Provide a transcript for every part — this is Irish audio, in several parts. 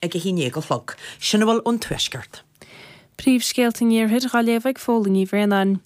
ag a haon déag a chlog. Sin a bhfuil ón Tuaisceart. Príomhscéalta an Iarthair, Dá léamh ag Fódhla Ní Bhraonáin.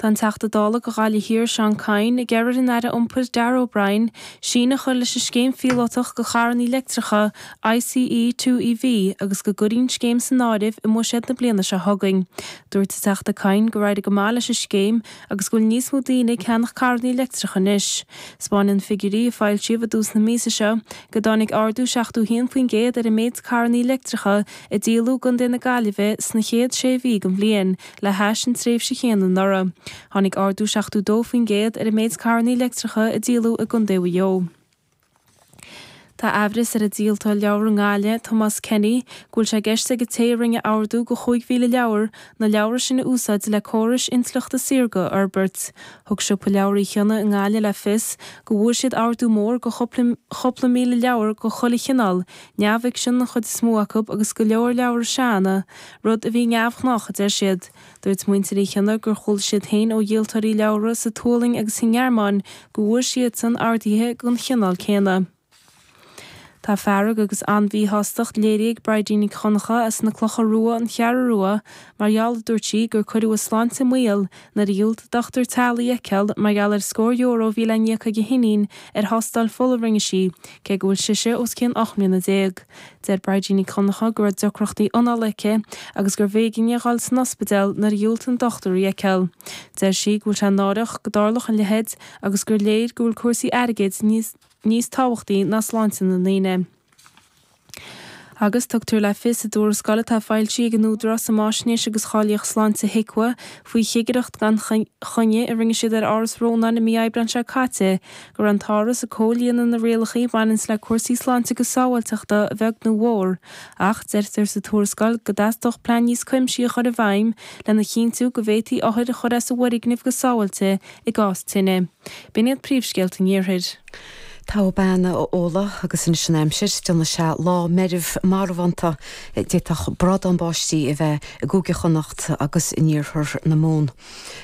Tá an Teachta Dála do Ghaillimh Thiar, Seán Kyne, ag iarraidh ar an Aire Iompair, Darragh O'Brien, síneadh a chur leis an scéim phíolótach do charrannaí leictreacha, ICE2EV, agus go gcuirfí an scéim san áireamh i mbuiséad na bliana seo chugainn. Dúirt an Teachta Kyne gur éirigh go maith leis an scéim agus go bhfuil níos mó daoine ag ceannach carrannaí leictreacha anois. 'Spáineann figiúirí a foilsíodh i dtús na míosa seo go dtáinig ardú 71% ar an méid carrannaí leictreacha a díoladh i gContae na Gaillimhe sna chéad sé mhí den bhliain le hais an tréimhse chéanna anuraidh. Tháinig ardú 72% ar an méid carrannaí leictreacha a díoladh i gContae Mhaigh Eo. Tá aimhreas ar an díoltóir leabhar i nGaillimh, Tomás Kenny, go bhfuil sé i gceist ag an té a rinne ordú de 5,000 leabhar na leabhra sin a úsáid le córais intleachta saorga a fhorbairt Thug Siopa Leabhar Uí Chionnaith i nGaillimh le fios go bhfuair siad ordú mór de chúpla míle leabhar de chuile chineál, neamhfhicsean an chuid is mó acu agus go leor leabhra seanda, rud a bhí neamhghnách, a deir siad. Dúirt muintir Uí Chionnaith gur chuala siad féin ó dhíoltóirí leabhar sa tSualainn agus sa nGearmáin go bhfuair siadsan orduithe den chineál céanna. Tá fearg agus an-mhíshástacht léirithe ag Bridie Nic Dhonncha as na Clocha Rua, An Cheathrú Rua, mar gheall, a dúirt sí, gur cuireadh a sláinte i mbaol nuair a dhiúltaigh dochtúir teaghlaigh í a fheiceáil mar gheall ar scór euro a bhí le n-íoc ag a hiníon ar thástáil fola a rinne sí cé go bhfuil sise os cionn ocht mbliana déag. Deir Bridie Nic Dhonncha go raibh deacrachtaí anála aici agus gurbh éigean di a dhul san ospidéal nuair a dhiúltaigh an dochtúir í a fheiceáil. Deir sí go bhfuil sé náireach go dtarlódh a leithéid agus gur léir go bhfuil cúrsaí airgid níos níos tábhachtaí ná sláinte na ndaoine. Agus tugtar le fios i dtuarascáil atá foilsithe ag an Údarás um Fhaisnéis agus Cháilíocht Sláinte, HIQA, faoi chigireacht gan choinne a rinne siad ar Áras Rónáin i mí Aibreáin seo caite go raibh an tÁras ag comhlíonadh na rialacha a bhaineanns le cúrsaí sláinte agus sábháilteachta a bheag nó a mhór ach deirtear sa tuarascáil go dteastódh plean níos cuimsithí a chur i bhfeidhm lena chinntiú go bhféadfaí othair a chur as an bhfoirgneamh go sábháilte i gcás tine. B'in iad príomhscéalta an Iarthair. Tá go maith, a Fhódhla, agus anois an aimsir, déanfaidh sé lá meirbh marbhánta d'fhéadfadh brádán báistí a bheith i gCúige Chonnacht agus in iarthar na Mumhan.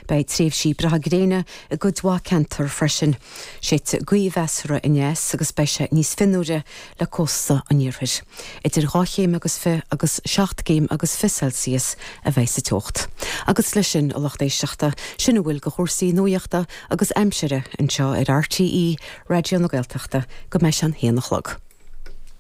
Beidh tréimhsí breátha gréine i gcuid mhaith ceantar freisin. Séidfidh gaoth mheasartha aneas agus beidh sé níos fionnuaire le cósta an iarthair, idir dhá chéim agus fiche agus seacht gcéim agus fiche Celsius a bheidh sa teocht. Agus leis sin a lucht éisteachta, sin a bhfuil de chúrsaí nuaíochta agus aimsire anseo ar RTÉ Raidió na Gaeltachta go mbeidh sé a haon a chlog.